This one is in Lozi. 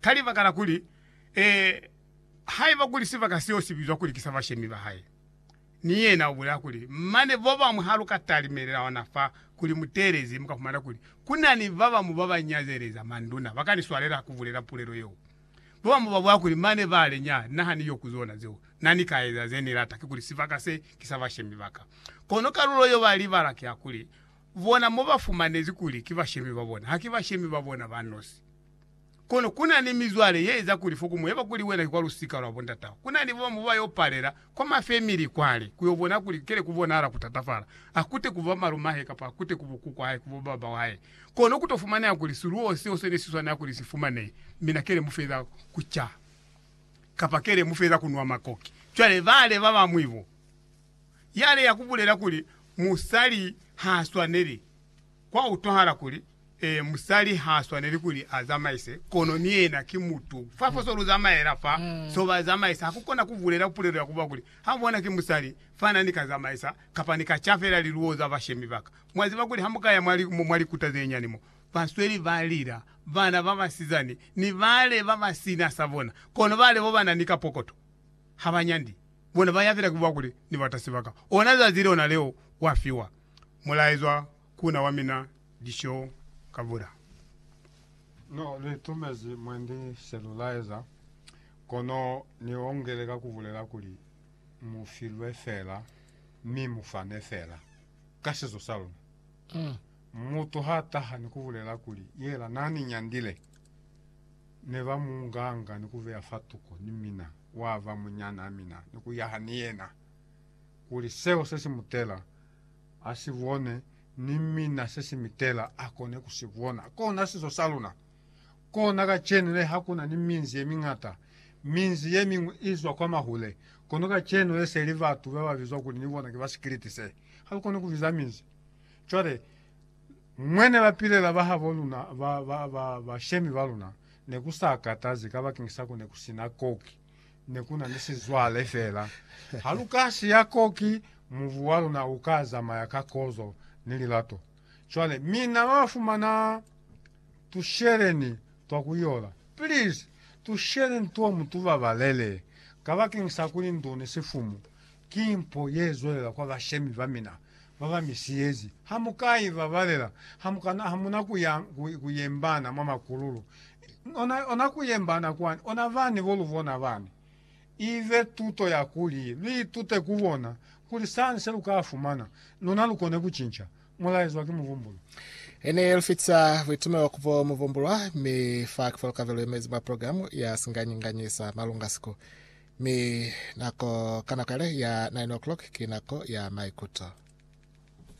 Ka libaka la kuli, ee, haiba kuli sibaka seo si bizwa kuli ki sa bashemi ba hae, ni yena u bulela kuli, Mane bo bañwi ha lu ka talimelela ona fa kuli mu teelezi, mu ka fumana kuli ku na ni ba bañwi ba ba nyazeleza manduna, ba ka ni swalela ku bulela pulelo yeo. Bo bañwi ba bulela kuli, Mane ba le, Nyaha, na ha ni yo ku zona zeo. Na ni ka eza ze ni lata, kikuli sibaka se ki sa bashemi ba ka. Kono kalulo yo ba libala ki ya kuli, bona mo ba fumanezi kuli ki bashemi ba bona, ha ki bashemi ba bona ba nosi. Kono ku na ni mizwale ye eza kuli fo ku mu yeba kuli wena ki kwa lusika lwa bondatao. Ku na ni ba bañwi ba yo palela kwa mafemili kwale ku yo bona kuli kele ku bonahala ku tatafala, ha ku te ku ba malume a hae kapa ha ku te ku bo kuku wa hae, ku bo baba wa hae. Kono ku to fumaneha kuli siluwo seo se ne si swanela kuli si fumanehe, mina kele mu feza ku ca kapa kele mu feza ku nwa makoki. Cwale bale ba bañwi bo, yale ya ku bulela kuli musali ha swaneli Kwa utwahala kuli, ee, musali ha swaneli kuli a zamaise, kono ni yena ki mutu. Fa fo so lu zamaela fa, so ba zamaisa, ha ku kona ku bulela pulelo ya ku ba kuli, Ha bona ki musali, fana ni ka zamaisa, kapa ni ka ca fela liluwo za bashemi ba ka. Mwa ziba kuli ha mu ka ya mwa, mwa likuta ze nyani mo, ba sweli ba lila, bana ba basizani, ni bale ba ba si na sa bona, kono bale bo ba na ni ka pokoto, ha ba nyandi. Bona ba ya fela ki ku ba kuli, Ni batasi ba ka. Ona zazi lona leo, wa fiwa. mulaezwa ku na wa mina Disho Kabura. No li tumezi mwendi selulaeza, kono ni ongele ka ku bulela kuli, Mu filwe fela, mi mu fane fela. Ka sizo sa luna, mutu ha taha ni ku bulela kuli, Yela na ni nyandile, ne ba mu nganga ni ku beya fa tuko ni mina, wa ba munyana mina, ni ku yaha ni yena. kuli seo se si mu tela a si bone, ni mina se si mi tela a kone ku si bona. Kona sizo sa luna. Kona kacenu le ha ku na ni minzi ye miñata, minzi ye miñwi i zwa kwa mahule, kono kacenu le se li batu ba ba bizwa kuli ni bona ki ba sikiliti se. Ha lu koni ku biza minzi. Cwale, mwene bapilela ba habo luna, ba, ba, ba, bashemi ba luna, ne ku sa katazi, kabakeng sa ku ne ku si na koki. ne ku na ni sizwale fela. Ha lu ka siya ko, ki mubu wa luna u ka zamaya ka kozo ni lilato. Cwale, mina ba fumana, tusheleni twa ku yola. Please, tusheleni two mu tu babalele, kabakeng sa kuli ndu ni sifumu ki mpo ye zwelela kwa bashemi ba mina ba ba mi siyezi. Ha mu ka i babalela, ha mu ka na, ha mu na ku ya, ku, ku yembana mwa makululu, Ona, ona kuyembana kwani, ona bani bo lubona bani. Ibe tuto ya kuli luitute ku bona kuli sani se luka fumana, luna lukone kucinca mulaezwa ki mubumbulwa. Hene lufica buitumelo ku bo mubumbulwa, mi fa kifulo kabelo yemezi mwa programu ya singanyi-nganyi sa malunga siku. Mi nako, ka nako yale ya nine o'clock, ki nako ya maikuto.